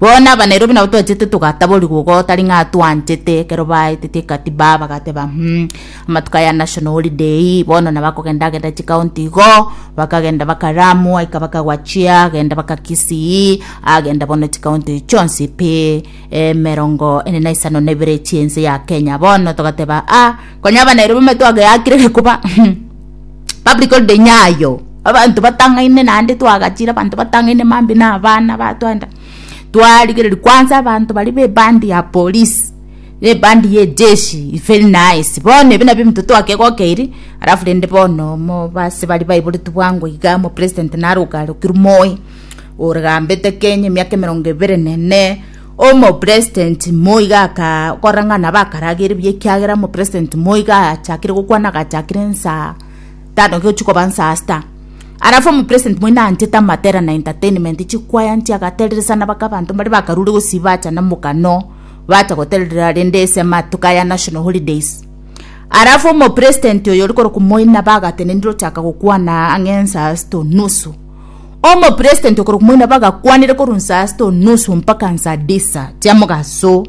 Bono aba Nairobi nabo twachete togataborigwa igo tari ng'a twanchete ekero baetetie ekatiba bagateba mm amatuko aya national holiday bono nabo akogenda agenda chikaunti igo bakagenda baka Lamu aika baka Wachia agenda baka Kisii agenda bono chikaunti chionsi pi emerongo ene na isano na ibere chiense ya Kenya bono togateba ah konya aba Nairobi ime twageakire gekuba Public holiday nyayo abanto batang'aine naende twagachire abanto batang'aine mambi na abana batwanda twarigereria kwansa abanto baria ba ebandi ya polisi na ebandi ya ejeshi very nice bono ebi nabio ebinto twakegokeiri alafu rende bono omo base baria baiboretwe bwango iga omopresident naroka arokirwe moi ore gambete kenya emiaka emerongo ebere na ene. Omopresident Moi iga akakorang'ana bakaragere buya ekiagera omopresident Moi iga achakire gokwana agachakire nsaa tano gochia koba nsaa sita arafu omopresident Moi naanchete amatera na entertainment chikwaya chia agatereresana baka abanto mbare bakarure gosii bacha na mogano bacha goterera rende ase amatuko aya national holidays arafu omopresident oyo ore korokwa Moi nabo agatenenire ochaka gokwana ang'e nsaa sita onusu. Omopresident okorwa komoina bagakwanera korwa nsaa sita onusu mpaka nsaa disa chia mogaso,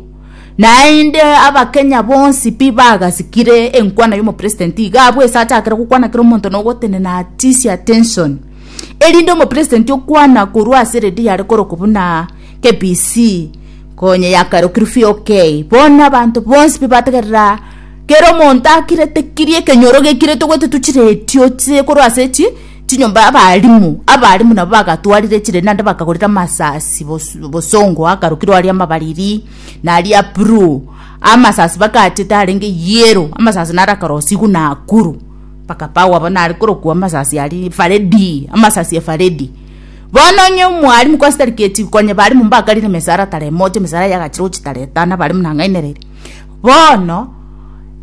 naende abakenya bonsi pi bagasikire enkwano ya omopresident iga abwo ase achakire gokwana kera omonto na ogotenena atise attention erinde omopresident okwana korwa ase radio yare korokwa buna KBC konya yakarokirwe VOK bono abanto bonsi pi bategerera kera omonto akirete kiria ekenyoro gekirete gototwa chiredio chire korwa ase chi. Chinyomba abalimu abalimu nabo bagatwarire chire naende bakagorera amasasi bosongo akarukirwe aria amabariri na aria bruu amasasi bakachete arenge yero amasasi nare akarosigwa na akuru bakapagwa bono nare korokwa amasasi ari faredi amasasi efaredi bono onye omwalimu kwase tari keti konya balimu mbakarire emesaara tara emoja emesaara yagachire gochia tara etano abalimu nang'ainereire bono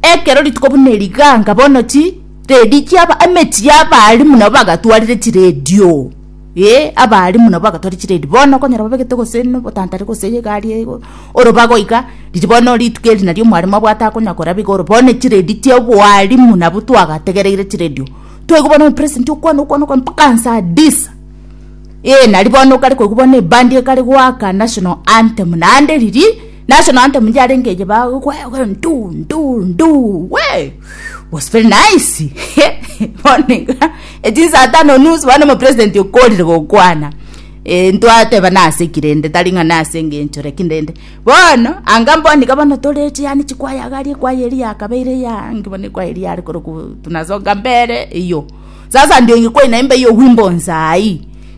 ekero rituko buna eri ganga bono chi. Redi chiaba emechie abaalimu nabo bagatwarire chiredio eh abaalimu nabo bagatwarire chiredio bono okonyora babegete gose nobotantare gose egari eye igo oro bagoika riria bono rituko eri nario omwalimu abwate akonya koraba iga oro bono chiredi chia obwalimu nabo twagategereire chiredio twaigwa bono omopresidenti okwana okwana okwana mpaka nsa adisa eh naria bono okare koigwa bono ebandi ekare goaka national anthem naende riria. Na ase na anthem yarenge eye ba gokwayoka ndu ndu ndu we was very nice bono iga echinsaa tano nusu bono omopresident okorire gokwana Eh, ntwateba naseki rende tari ng'a nase engencho lakini rende bono anga mboni iga bono toreche yaani chikwaya iga aria ekwaya eria yakabeire eya nki bono ekwaya eria yare koroku tunasonga mbere eyio sasa ndio ingekuwa inaimba hiyo wimbo nsaii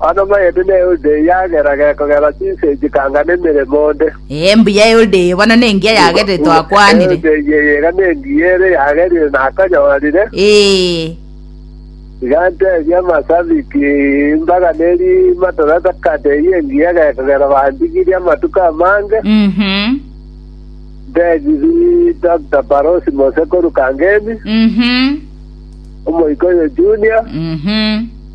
Amanoma aye buna Eulidei yagera gekogera chinsa echi kanga nemeremo onde. Ee, mbuya Eulidei bono nengiya yagerire twakwanire. Eulidei eye iga nengiya ere yagerire nakonyorire. Ee. Iga ntebie amasabiki, imbaga neri matora takata eyio engiya gekogera bandigirie amatuko amange. Mhm. Ntebiri Doctor Parosi Mosekuru Kangemi, Mhm. omoika oyo Junior, Mhm.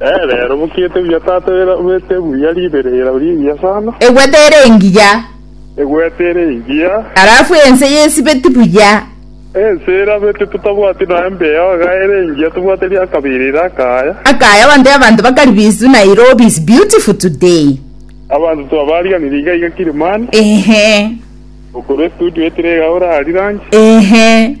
Ee, rero bokiete buya tata egwete buya ribere erao rigiya sana. Egwete ere engiya. Egwete ere engiya. Arafu ense yesibeti buya. Ense erabeti totabwati nonya mbeo iga ere engiya tobwate ria kabere ere akaya. Akaya onde abanto bakari bisu Nairobi is beautiful today. Abanto twabariganire iga iga Kilimani. Eeh. Okorwa estudio etire iga ore aria ranche. Ehe.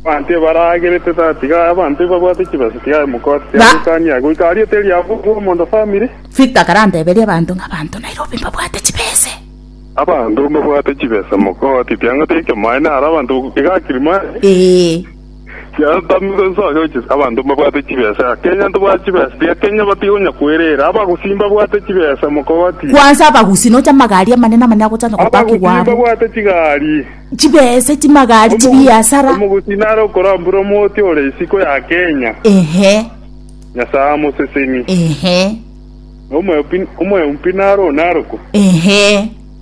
Abanto ebaragerete tata tiga aye abanto ebabwate chibesa tiga aye mokoti tiga Ba- goikania aye goika aria eteri ya bobe omonto family. Victor karanteberie abanto ng'a abanto Nairobi mbabwate chibese. Abanto mbabwate chibesa mokoti tiga ngoteba ekemo aye naro abanto iga kirimari. Ee. Yatamigwe inse onye oche abanto mbabwate chibesa, kenya ntobwate chibesa, tiga kenya batigonya kwerera. Abagusi mbabwate chibesa, mokobati. Kwansa abagusi nocha amagari amanene amanene agochanda Abagusi gopakigwa abo. mbabwate chigari. Chibesa chimagari Omogusi- chibiasara. Omogusi nare okorambura omoti ore isiko ya kenya, Ehe, Nyasae amoseseni. ehe, Omoyompi- Omoyompi nare onarokwe. ehe.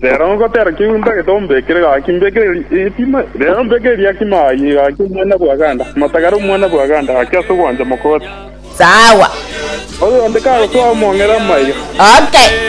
Rero ngotera kegundo egete ombekere gaki, mbekere riakima, rero mbekere riakima aye gaki omwana bwa ganda, amatagare omwana bwa ganda gaki ase ogwancha mokoti. Sawa. Oyonde kagosoa omong'era maiga. Okay.